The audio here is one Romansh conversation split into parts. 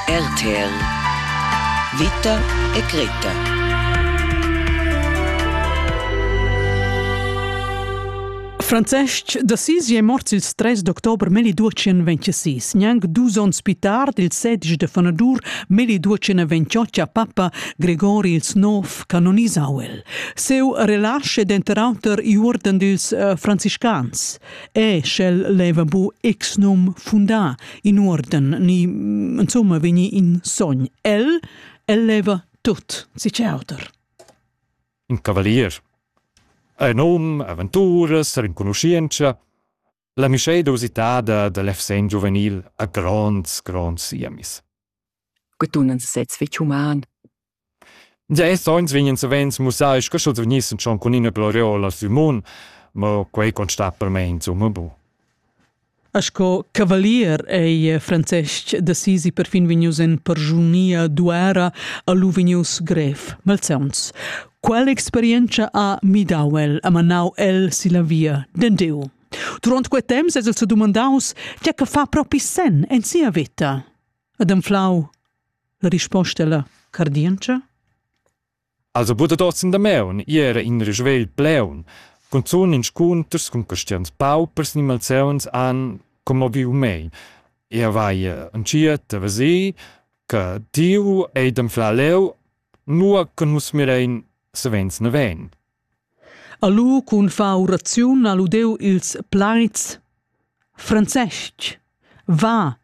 RTL Vita e Greta Francesc D'assisi è mort il 3 d'october 1226, gnanc dus onns più tard il 16 de fanadur 1228 a papa Gregori il Nov canonisauel. Seu relasce denter auter i uorden dils uh, franciscans. e sch'el leva bu ex num fundà in uorden ni insomma vegni in sogn el el leva tut si auter in cavalier ein num aventuras renconuschientscha la mischeda usitada da l'efsen giuvenil a gronds gronds siemis que tunan sez fetg human Gia ils onns vegnan savens mussai sco sch'els vegnissen schon cun ina gloriola sü mun, mo quei constat per mei insumma bu. Sco cavalier ei Francesc d'Assisi perfin vegnius en persunia d'uera a lu vegnius grev malsauns. Quella experienza ha midau el, ha manau el silla via d'Endeu. Durant quei temps es el sedumandaus tgei che fa propi sen en sia vita. Ad anflau La risposta è la cardientscha. Also bude das in der Meun, ihre in Rüschwel Pleun, cunzun in scunters cun cristians paupers ni malseuns an como viu mei. Ia vai anciet a vesi, che tiu ei dem fla leu, nua che nus mirein savens ne ven. Ha lu cun far uraziun ha lu deu ils plaids Francestg, va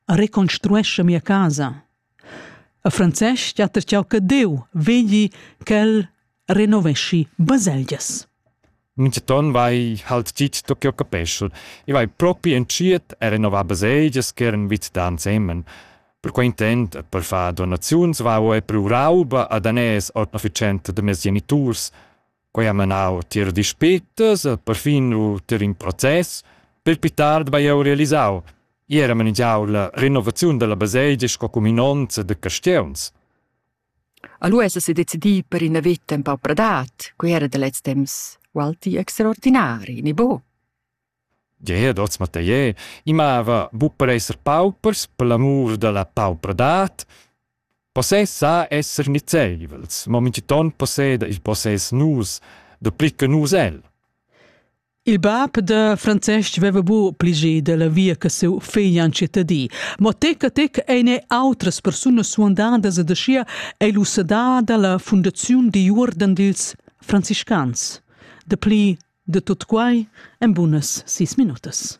a reconstruescha mia casa. A Francestg ha tertgau che Deu vegli ch'el renoveschi baselgias. Minchaton vai halt dit da ch'eu capeschel. I vai propi entschiet a renovar baselgias ch'eran vit da ansemen. Per quei intent e per far donaziuns vau e per rauba a daners ord efficienta da mes geniturs. Quei ha menau tier dispettas e perfin u tier in process, per pli tard bei jeu realisau. Ier ha manigiau la renovaziun dalla baselgia sco cuminonza da castieuns. Allora se decidì per ina vita un pau pradat, quei era da lez temps, o alti extraordinari, ni bo? Gia hoz Mathier i mava buc per esser paupers per l'amur dalla paupradad. Possess sa esser nizeivels, mo mintgiton posseda il possess nus, dapli che nus el. Il bab da Francesc veva bu pligie dalla via che siu figl antschetta di, mo tec a tec ein outras persunas suandadas ed aschia ei lu sedà dalla fundaziun di uorden dils franciscans. Dapli de tut quai en bunas sis minutas.